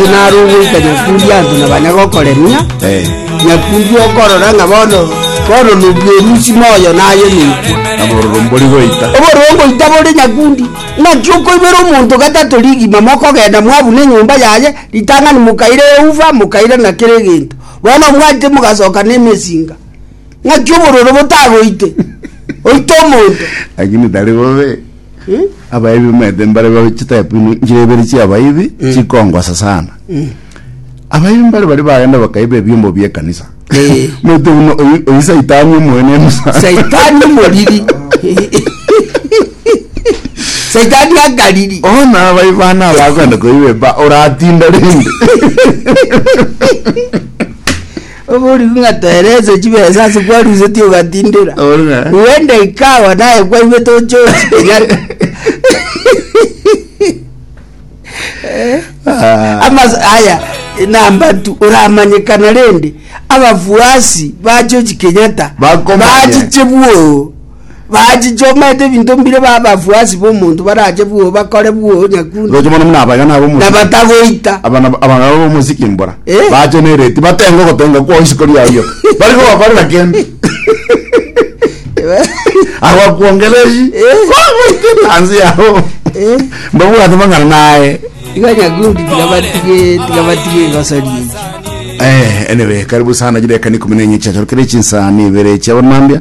Inche nare ogoika nyakundi Anto na banyagokoremia, nyakundi okorora ng'a bono, bono nobwerusi moyo naye neikwe. Nabororo mbori goita. Obororo ngoita bore nyakundi. Naki okoibera omonto gatato rigima mokogenda mwabuna enyomba yaye, ritang'ani mokaira eufa, mokaira na kera egento. Bono mwaite mogasoka nemesinga. Naki obororo botagoite, oite omonto. Lakini tari bobe. Abaebi bamaete mbare babe chitype ino nchire ibere chia abaebi chikongosa sana. Abaebi mbare bari bagenda bakaiba ebiombo bie kanisa. Eh. Maete uno oyi oyi saitani omwene eno sana. saitani omoriri saitani akariri Ona abaebi bana abakwenda koiba eba oratinda rende. Oborigwe ng'a toerese chibesa ase kwarusetie ogatindera. Oboru ng'a. Rwende ikawa naye kwaigwe tochochi kenyatta. Ah. Amas aya namba tu oramanyekana rende abafuasi bachochi kenyatta Bakomanya. bachiche bwoo bachichomete ebinto mbire b'abafuasi b'omonto barache bwoo bakore bwoo nyakunde Roche mono muna abagana na ab'omosike. batagoita Abana abagana b'omosike mbora. Eh? Bache nereti batenga ogotenga kwao isiko riao rioka. Bari kobakorera kende. Abakwongereshi. Eh? Kogoite tanzi yao. Eh? Mbabwate mang'ana naye. iga nyakundi tiga batige tiga batige egosori eye Eh, anyway, karibu sana jire kani kumene nyecha chorokere chinsani ibere chia bonambia.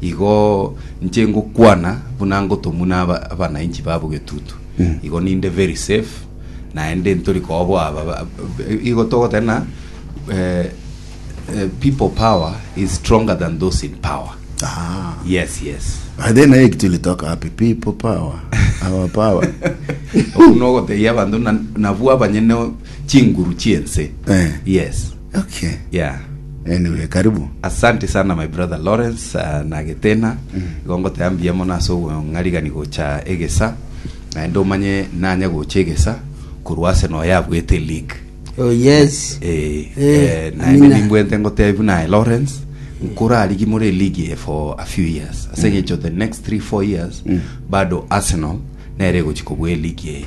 Igo inche ngokwana buna ngotomwa na aba- abanainchi babo getutu igo ninde very safe naende ntori koboa aba- ba- ba- igo togoteba na eh, eh, people power is stronger than those in power Ah. yes yes By then I actually talk happy people power. Our power. okuno ogotebia abanto na- nabwo abanyene chinguru chiense Eh. yes Okay. yeah Anyway, karibu. asante sana my brother lawrence uh, nagetena igo ngoteba mbuya mono ase obong'arigani gocha egesa naende omanye nanya gocha egesa korwa ase noyo abwete league Oh yes. Eh, Eh, eh, naende amina. nimbwente ngotebi buna lawrence nkorarigi more league eye for a few years ase ng'encho the next 3 4 years bado arsenal nere egochi kobua league eye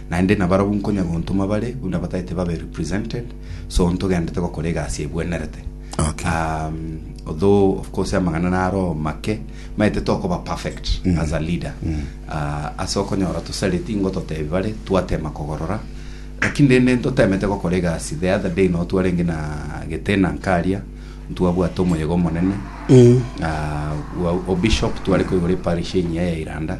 Naende nabarabwo nkonya gontoma bare buna batagete babe represented, so ntogendete gokora egasi ebwenerete. Okay. Um, although of course amang'ana naro make, maete tokoba perfect as a leader. Uh, ase okonyora tosareti ingo totebi bare twatema kogorora lakini rende ntotemete gokora egasi the other day no twarenge na getena nkaria ntwabwate omoyega omonene uh, wa- obishop tware koigora eparish engiya ya iranda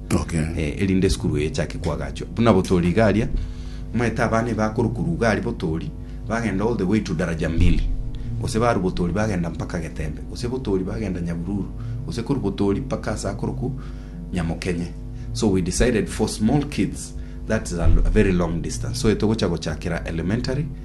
Okay. Eh, erinde esukuru eye echake koagachwa buna botori iga aria omanyete abana iba akorokuru iga aria botori bagenda all the way to daraja mbili gose baru botori bagenda mpaka getembe gose botori bagenda nyahururu gose koru botori mpaka ase akoroku nyamokenye so we decided for small kids that is a, a very long distance so etogocha gochakera elementary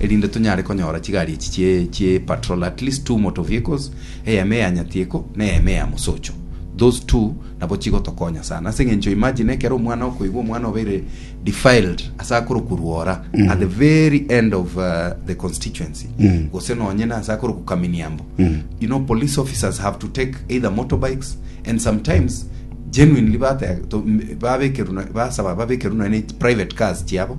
erinde tonyare konyora chigari echi chie chie patrol at least two motor vehicles, eyemo eya nyatieko na eyemo eya mosocho, those two nabo chigotokonya sana ase eng'encho imagine ekero omwana okoigwa omwana obeire defiled ase akorokurwa ora at the very end of uh, the constituency Mm. gose nonye na ase akoroku kaminiambo Mm. you know police officers have to take either motorbikes and sometimes genuinely bate- to- m- babekerwa basaba babekerwa nonye private cars chiabo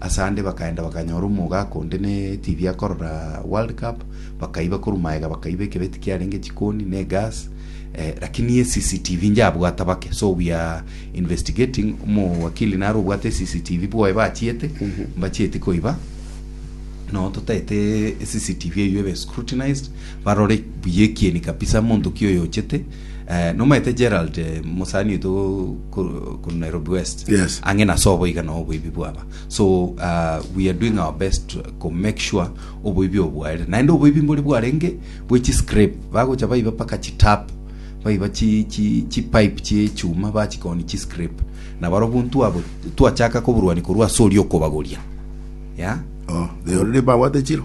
Ase ande bakaenda bakanyora omogaaka onde ne TV akorora World Cup, bakaiba korwa magega bakaiba ekebeti kiarenge chikoni ne egas, eh, lakini ye CCTV njabwata bake. So we are investigating, omowakili naro obwate CCTV bwoye bachiete, mbachieti koiba no totaete CCTV eywo ebe scrutinized barore buya ekieni kabisa monto ki oyo ochete Eh, nomaete Gerald eh, mosani oito kor- korwa Nairobi West. Yes. Ang'e na sobo iga na oboibi bwaba. So uh, we are doing our best to to make sure oboibi obo bwaere. Naende oboibi mbori bwarenge bwe chi scrape bagocha baiba paka chi tap baiba chi chi chi pipe chi chuma bachikoni chi scrape. Na barobwo ntwabo twachaka koburwani korwa asori okobagoria. Yeah. Oh, they already babwate chiro.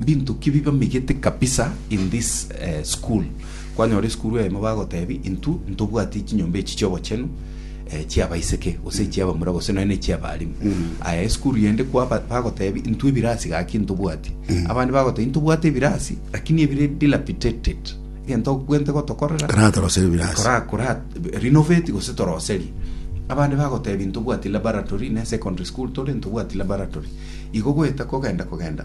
Mbinto ki bibamegete kabisa in this school? Kwanyora esukuru eyemo bagotebi intwo ntobwati chinyomba echi chiobochenu chiabaiseke gose echiabamura gose nonya nechiabalimu. Aya esukuru yende kwa bagotebi intwo ebirasi gaki ntobwati. Abande bagotebi ntobwate ebirasi lakini ebire dilapidated egento bwente gotokorera Koratoroseria ebirasi. kora kora renovate gose toroserie abande bagotebi ntobwati laboratory ne secondary school tore ntobwati laboratory igo goeta kogenda kogenda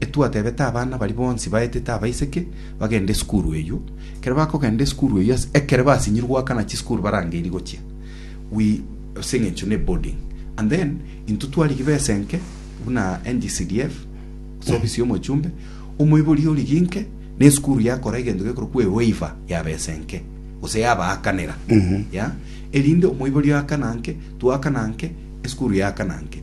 Etwatebete abana baria bonsi baetete abaiseke bagende esukuru eyio. Ekero bakogenda esukuru eyio ase ekere basinyirwe goakana chisukuru barangeirie gochia we ase eng'encho ne boarding and then intwe twarigia besa enke buna NGCDF ase ofisi ya omochumbe omoibori origie inke na esukuru yakora egento gekorokwa e waiver ya besa enke gose yabaakanera ya erinde omoibori akana nge twakana nge esukuru yakana nge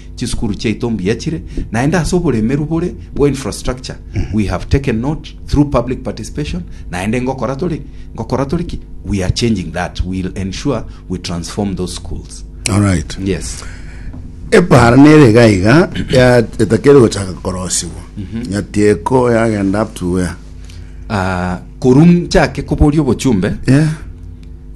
Chisukuru chiaito mbuya chire, naende ase oboremeru bore bwa infrastructure we have taken note through public participation, naende ngokora tori ngokora tori ki we are changing that, we will ensure we transform those schools. Alright. Yes. epara nere iga iga ya etakere gochaka korosigwa nyatieko yagenda up to where Ah, korwa nchake koboria obochumbe, yeah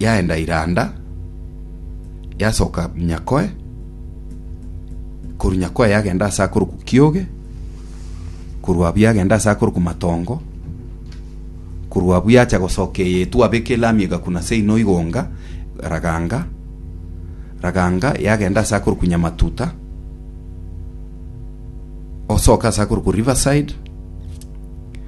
yaenda iranda, yasoka Nyakoe, korwa Nyakoe yagenda ase akorokwa Kioge, korwa abwo yagenda ase akorokwa Matongo, korwa abwo yacha gosoka eye etwa Abeke Lami egakuna ase Ino Igonga, Raganga, Raganga yagenda ase akorokwa Nyamatuta, osoke ase akorokwa Riverside,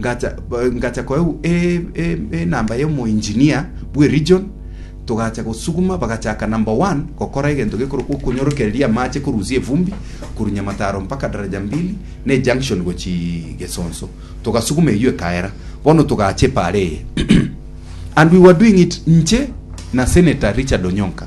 Ngacha ba- ngacha koeu e- e- enamba y'omoengineer bw'eregion, togacha gosuguma, bagachaka number one gokora egento gekorokwa okonyorokereria amache korusia evumbi korwa Nyamataro mpaka Daraja Mbili na ejunction gochii Gesonso. Togasuguma eyio ekaera. Bono togacha epaara eye. And we were doing it inche na Senator Richard Onyonka.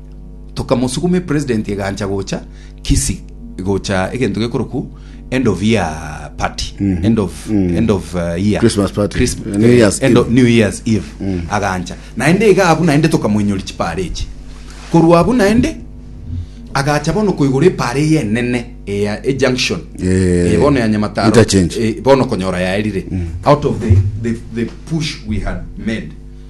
Tokamosuguma epresident egancha gocha Kisii gocha egento gekorokwu end of year party end of end of uh, year Christmas party. Christ- New eh, Year's end of Eve. New Year's Eve agancha naende iga abu naende tokamoinyori chipare echi korwa abu naende agacha bono koigora epare eye enene eya e junction Eh, Eh, bono ya nyamataro interchange. Eh, bono konyora yaerire out of the, the, the push we had made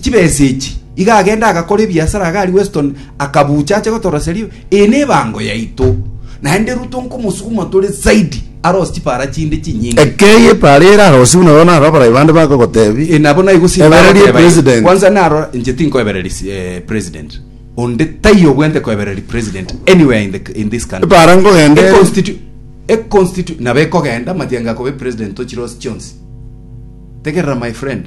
chibesa echi, iga agende agakore ebiasara iga aria Weston akabucha ache gotoroseria eye nebango yaito naende rwo tonkomosuguma tore zaidi arose chipara chinde chinyinge. Ekei epara ere arosiu buna bono naro abarai bande bakogotebi, E, nabo naigo simba Ebereria agoteba igo. president. Kwanza naro inche tinkoebereria si- eh, president onde taiyo obwente koebereria president anywhere in, the, in this country Epara nkogenda ere. Econstitu- econstitu- nabo ekogenda matianga akobe president tochire ase chionsi tegerera my friend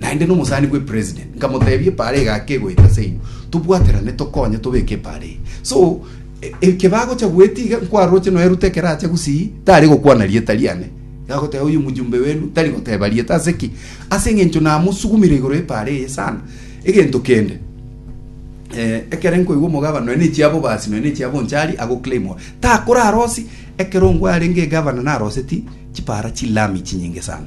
Naende nomosani bw'epresident nkamotebia epaara egaka egoeta ase inwe, tobwaterane tokonye tobeke epaara eye. So, e- eke bagocha goeta iga nkwaroche nonya Ruto ekero acha gusii, tari gokwana rieta riane. Gagoteba oyo mjumbe wenu tari goteba rieta ase ki? Ase eng'encho namosugumire igoro y'epaara eye sana. Egento kende, eh, ekere nkoigwa omogabana nonya nechiabobasi nonya nechiabonchari agoclaimwa takorarosi ekero ngwarenge egavana naroseti chipaara chilami chinyinge sana.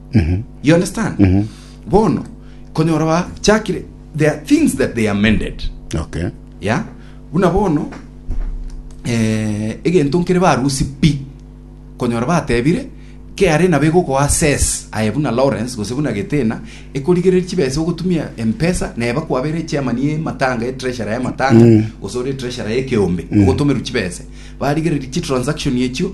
you understand Mhm. bono konyora bachakire there are things that they amended okay ya buna bono eh, egento nkere barusi pi konyora batebire kare nabo egokoa ses aye buna lawrence gose buna getena ekorigereria chibesa ogotumia empesa neba kwabere chairman ye matanga ye treasurer ya matanga Mm. gose ore treasurer ye keombe Mm. ogotomerwa chibesa barigereria chi transaction echio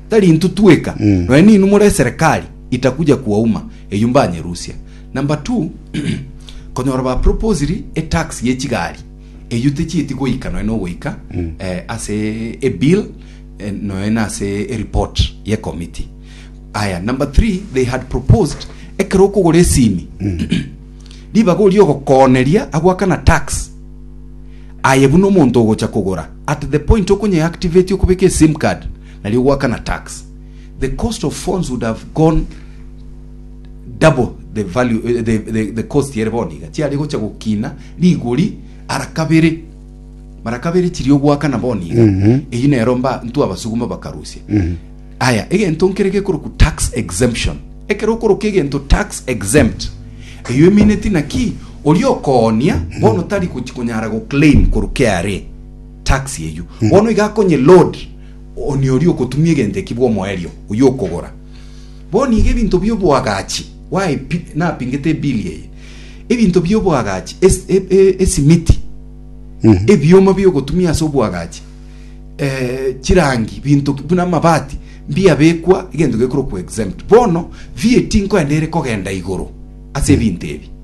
Tari intwe tweka, nonya ninwe more eserekari itakuja kuwauma, eyio mbanyerusia. Number two, konyora ba proposiri etax ye chigari, eyio techieti goika nonya nogoika eh, ase ebill eh, nonya na ase ereport ye committee. Aya, number three, they had proposed ekero okogora esimi, ribaga oria ogokooneria agoakana tax, aye buna omonto ogocha kogora, at the point okonye activate okobeka esim card, nario goakana tax, the cost of phones would have gone double the value eh, the, the, the cost ere bono iga chiare gocha gokina rigori ara kabere mara kabere chirio goakana bono iga eyi nero mba ntu abasuguma bakarusia aya egento nkere gekoroku tax exemption ekero okoroka egento tax exempt eyo emineti naki oria okoonia bono tari gochi konyara goclaim koru KRA tax eyio, bono iga akonye load oni oria okotumia egento ekio bw'omoerio oyio okogora. Bono iga ebinto bi'oboagachi waepi, napingete ebili eye, ebinto bi'oboagachi, es- e- e- esimiti, ebioma bi'ogotumia ase oboagachi, eh, chirangi, binto ki- buna amabati, mbiabekwa egento gekorokwa exempt. Bono VAT nkoende ere kogenda igoro ase ebinto ebi.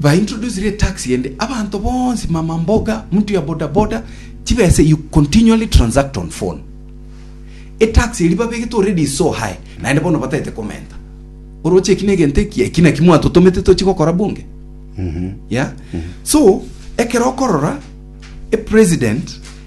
Ba introduce re tax ende abanto bonsi mama mboga mtu ya boda boda chibesa you continually transact on phone e tax eri babegete already is so high naende bono batete komenta oroche eki negento eki eki naki mwatotomete tochigokora bunge yeah so ekero okorora e president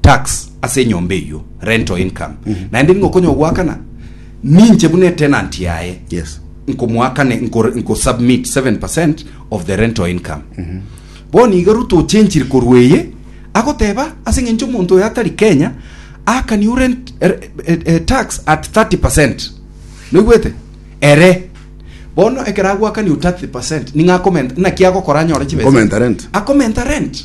tax ase enyomba eyio rental income naende nigo okonya ogoakana ninche buna etenant yaye yes nkomoakane nko- nkosubmit 7% of the rental income bono iga ruto ochenchire korwa eye agoteba ase eng'encho omonto oyo atari kenya akani urent er- eh, eh, tax at 30% noigwete ere bono ekero agoakani u 30% ning'akomenta naki agokora anyore chibesa Akomenta rent. akomenta rent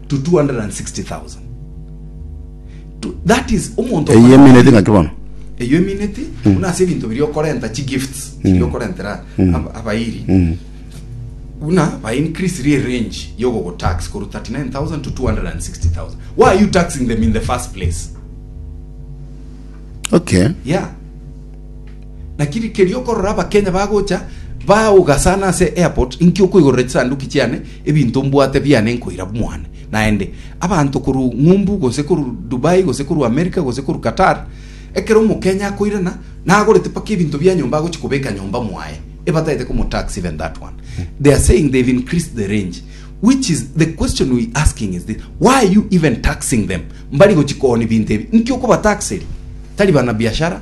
to 260,000. To, that is omonto Eye emineti ng'aki bono. eyo emineti buna ase ebinto biri okorenta chi gifts chiri okorentera ab- abairi buna ba increase ri range yogogo tax koru 39000 to 260000 why are you taxing them in the first place Okay. yeah lakini keri okorora abakenya bagocha baogasana ase airport inki okoigorera chisanduki chiane Ebinto mbwate biane nkoira bumwana, naende, abanto korwa ng'umbu, gose korwa Dubai, gose korwa America, gose korwa Qatar, ekero Omokenya akoirana, nagorete mpaka ebinto bia nyomba agochia kobeka nyomba mwaye, ebatagete komo tax even that one. They are saying they've increased the range, which is the question we asking is this, why are you even taxing them? Mbari gochia kooni binto ebi, nki okobataxeri? Tari bana biashara?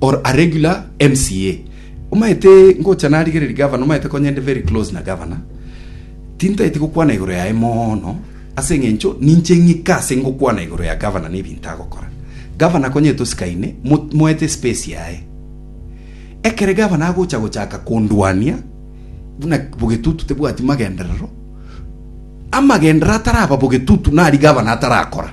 or a regular MCA omaete ngocha narigereri governor omaete konya inde very close na governor tintaeti gokwana igoro yaye mono ase eng'encho ninche ng'ika ase ngokwana igoro ya governor na ebinto agokora governor konya etosikaine mo- moete space yaye ekere gavana agocha gochaka kondwania buna bogetutu tebwati magenderero amagenderero ataraba bogetutu nari gavana atarakora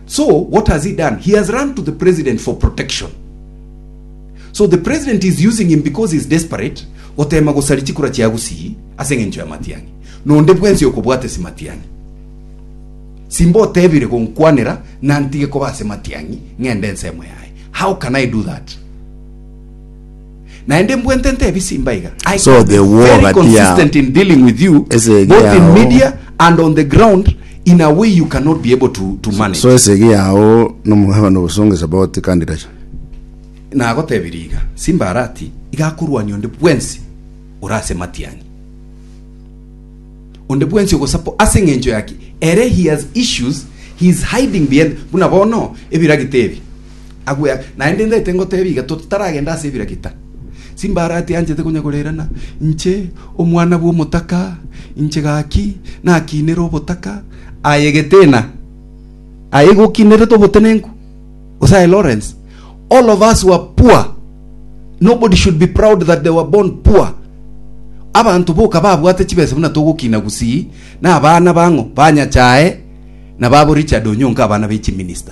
So what has he done? He has run to the president for protection. So the president is using him because he is desperate goteema gosaria chikura chia Gusii ase eng'encho ya Matiang'i. Nonde bwensi okobwata ase Matiang'i. Simba otebire gonkwanera na ntige koba ase Matiang'i ng'ende ensemo yaye. How can I do that? Naende mbwentente ebisimba iga. I So can be the war very gati yao consistent in dealing with you, Ese both in yao. media and on the ground, in a way you cannot be able to, to manage. so esegi yao nomogaba nobosonge saboti kandi racha Nagotebirie iga, Simbarati iga akorwania onde bwensi ore ase matiang'i. Onde bwensi ogosapo ase eng'encho yaki, ere he has issues, he is hiding behind, buna bono ebiragita ebi. agwe aa. Naende ndete ngoteebie iga, totaragenda ase ebirakita, chimbarati anchete konyegoreerana, inche omwana bw'omotaka, inche gaki nakinire obotaka aye Geteena, aye gokinerete obotenenku, gose aye Lawrence. All of us were poor. Nobody should be proud that they were born poor. Abanto boka babwate chibesa buna togokina gusii, na abana bang'o ba Nyachae, na babo Richard Onyonka abana be chiminista.